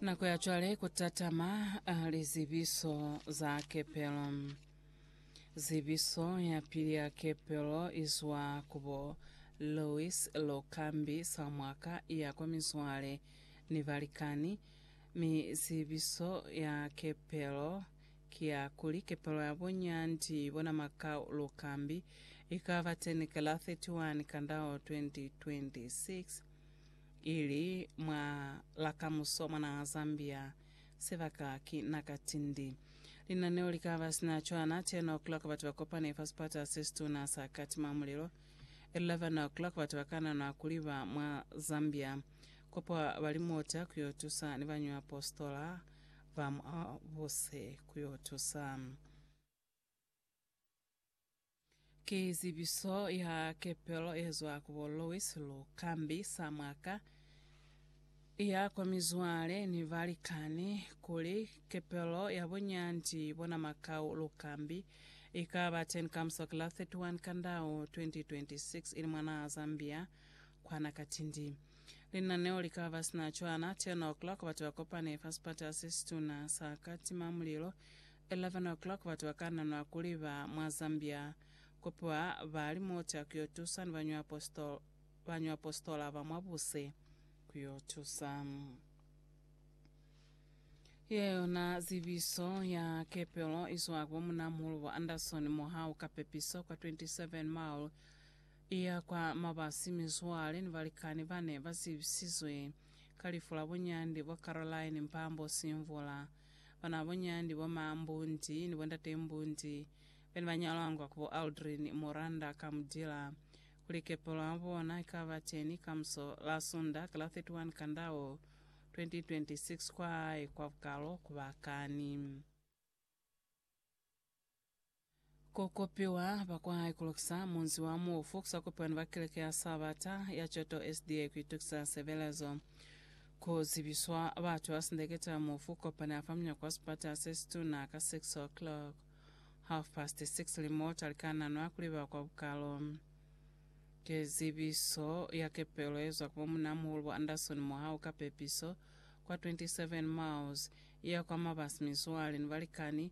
Nako ya cwale ku tatama ah, lizibiso za kepelo. Zibiso ya pili ya kepelo izwa kubo Louis Lokambi Samwaka ya kwa mizwale ni balikani, mi zibiso ya kepelo ki ya kuli kepelo ya bo Nyandi bona Makau Lokambi ikaba teni ka la 31 Kandao 2026. Ili mwa la kamuso mwa naha Zambia, sibaka ki naka tindi. Linaneo likaba sina cwana, 10 o'clock batu bakopane fa sipata sesituna sa Katima Mulilo, 11 o'clock batu bakananwa kuliba mwa Zambia kopo bali mota kuyo tusa ni bañwi apostola ba mwa buse kuyo tusa. Ki zibiso ya kepelo ye zwa ku bo Louis Lukambi sa mwaka ya kwa mizwale ni balikani kuli kepelo ya bunyandi bona Makau Lukambi i ka ba teñi ka musi wa ki la 31 Kandau 2026 ili mwa naha Zambia kwana Katindi. Linaneo li ka ba sina cwana 10:00 batu ba kopane fa sipata se situna sa Katimamulilo 11:00 batu ba kananwa kuli ba mwa Zambia kupiwa ba li mota ku yo tusa ni bañwapositola, bañwapositola ba mwa buse ku yo tusa. Ye yona zibiso ya kepelo i zwa ku bo Munamulu bo Anderson mohaho ka pepiso kwa 27 Mile i ya kwa mabasi. Mizwale ni balikani ba ne ba zibisizwe ka lifu la bunyandi bo Caroline Mpambo Simvula. Banaboñandi, bomambundi, ni bondatembundi bene ba nyalangwa ku bo Aldrin Muranda ka mu dila kuli kepo lwa bona i ka ba teni kamuso la Sunda ka la 31 Kandao 2026 kwa hae kwa Bukalo ku ba kani. Ku kopiwa ba kwa hae ku lukisa munzi wa mufu, ku sa kopiwa ni ba Keleke ya Sabata ya Choto SDA, ku itukisa sebelezo, ku zibiswa batu ba sindekete ya mufu, ku kopana fa munyako wa sipata se situna ka 6:00, half past six, ili mo ta likananwa kuli ba kwa bukalo. Ki zibiso ya kepelo ye zwa ku bo Munamuhulu bo Anderson mo ha u ka pepiso kwa 27 miles, i ya kwa mabasi, mizwale ni balikani,